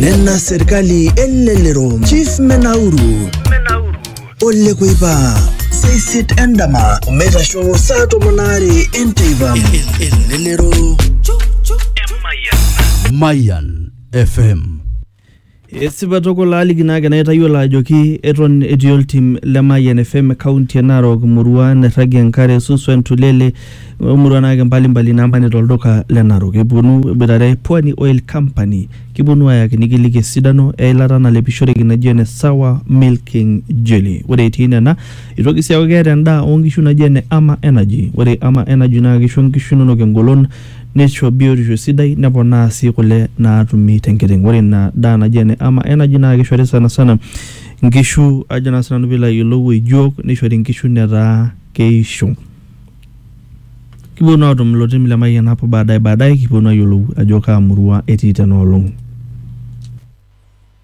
nena serkali elelero chief menauru ole kuipa seisit endama omeitasho saa tomon aare enteipa elelero Mayan FM Esipa tukul aaliki naa ake naitayiolo ajoki eton etii oltim le Mayian FM kaunti e Narok imurua nairragie enkare, Suswa, Entulele o murua naake mbali mbali naamanita olduka le Narok. Epwonu eboitare Pwani Oil Company kipwonu aayaki nikiliki esidano e ilata nalepishoreki naji ene Sawa Milking Jelly. Ore etii nena itoki sii aaku keeta endaa oo nkishu naji ene Ama Energy. Ore Ama Energy naa kisho nkishu inonok engolon neisho biotisho sidai neponaa sii kule naatumi te nkiteng. Ore ina daa naji ene ama energy naa keishori sanasana nkishu ajo naa sinanu piilo ayiolou ejuok neishori nkishu netaa keisho. Kipwonu aatum ilo tim le Mayian hapo baadaye baadaye kipwonu ayiolou ajo kaa murwa etii tena olong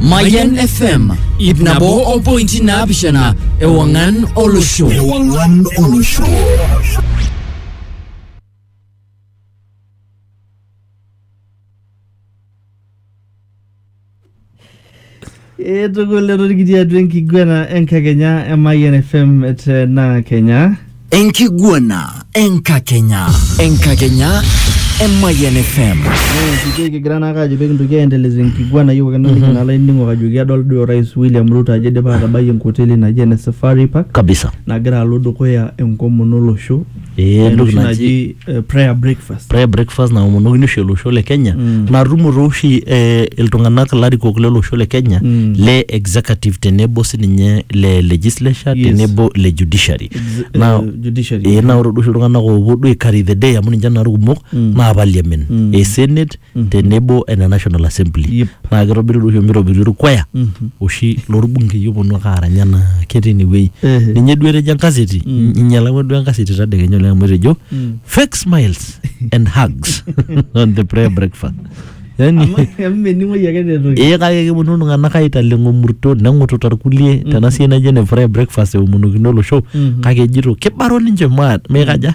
Mayan FM ip nabo o pointi naapishana ewang'an olosho. Ewang'an olosho. Etukul etorikiti atua enkiguana enkakenya e Mayian FM te naa Kenya. Enkiguana enkakenya. Enkakenya Emayian FM. Enkiki kigira naake ajo pee kintoki aendeleza enkiguana yiok ake naliki naa laining'ok ajoki adol duo orais William Ruto ajo idipa atabai enkoteli naji ene Safari Park Kabisa. nagira alo dukuya enkomono olosho. Ee entoki Enoshi naji eh, prayer breakfast prayer breakfast naomonokini oshi olosho le kenya Mm. natumo tooshi eh, iltung'anak larikok lolosho le kenya Mm. le executive tenebo sininye le legislature Yes. tenebo le judiciary Ex- na eh, judiciary. eh, na ore duo oshi iltung'anak oopuo duo ai carry the day amu ninche naa irkumok Mm. naa parliament Mm. eh, senate tenebo ene National Assembly Yep. naa kitobiri oshi mitobiri orkwaya oshi lorbunkei oponu ake aarany anaa ketii inewueji Ehe. ninye duo etejo enkaseti inyalakwa duo enkaseti tadekenya oleng amu etejo fake smiles and hugs on the prayer breakfast yani amu mening'oi ake netoki ee kake keponu iltung'anak aitaleng omurto neng'ututa irkulie tena siai naijo ene prayer breakfast eomonokino olosho kake ejito kibaro ninche maat meikaja